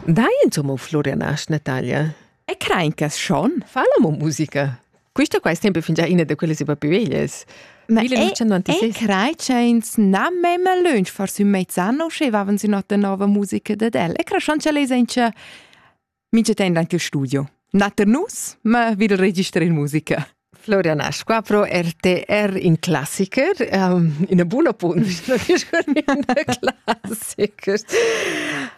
Dai insomma Florian Asch Natalia? E crein che schon fa la musica. Questo qua è sempre fingià una di quelle super più veglies. Ma e crei che ins na memme lunch forse un mezz'anno sche avevano si nota nuova musica da del. E creschon che les enche Mincha temp anche il studio. Nat er nus, ma vil register in musica. Florian Asqua pro RTR in classiker, um, in buon appunto, classiker.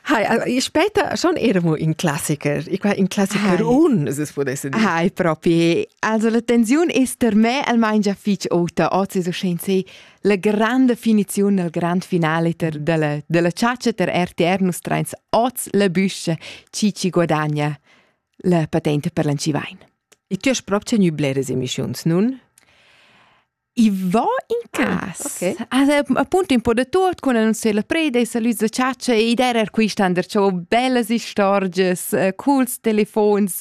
Hai, später schon eramo in classiker, ich war in classiker Hai. un, se potesse dire. Hai, proprio. Also la tensione è per me almeno già fitch ota, oggi so scen se La granda finiziun al grand finaliter dalla, dalla chatscha ter RTR nus trains oz la büscha chi ci guadagna la patente per l'Ancivain. E tu hast proprio tenu bleres emissiuns, nun? I va in cas. Ah, okay. Also, appunto un po' da tutto, quando annunciai la preda, i salüs da chatscha e id era quist ander, c'ho bellas istorgias, uh, cools telefons,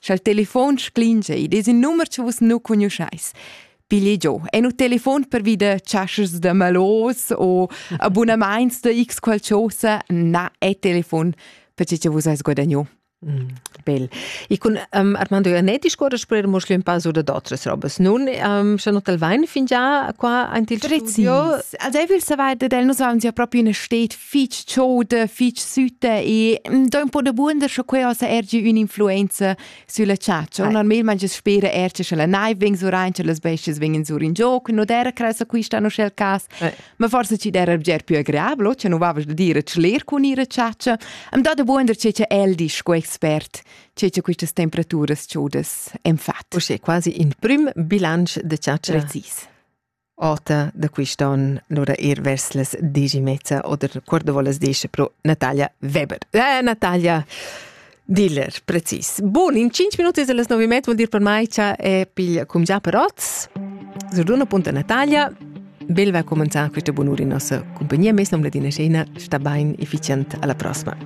Scha'l telefon sclingia id es ün numer cha vus nu cugnuschais. Pigli giò, è nu telefon pervida chaschas da malos o abunamaints da x qualchosa, na, è telefon, perché cha vus ais guadagno. Mm. Bel. E con um, Armando Ioannetti scorre sper mo schlüm passo da d'autras robas. Nun um, schon hotel vain fingià qua aint il Precis. studio. Also ich will saber, dass er noch so ja proprio in eine steht fich chauda, fich süta e mm, do un po da buonder sche quei ossa ergi ün'influenza sülla chatscha. Normalmente spera er che la naiv vegn sur rein, che las bestias vegnan sur in gioc, no era cressa quista no schel cas. Ma forse ci era bger più agreablo, che no vavas da dire schler cun ira chatscha. Am do da buonder che che el disch co expert che che quistas temperaturas chaudas en fat. Usche quasi in prüm bilanc de chatscha. Precis. Ota da quist on lura ir vers las dieci e mezza oder quart da volas diesch pro Natalia Weber. Eh, Natalia Diller, precis. Bun, in 5 minuti las 9 e mezza vuol dir per mai cha è piglia cum già per oz. Zurduna punta Natalia, bel va comenzar questa bunura in nostra compagnia, mes nom Ladina Scena, sta bain efficient alla prossima.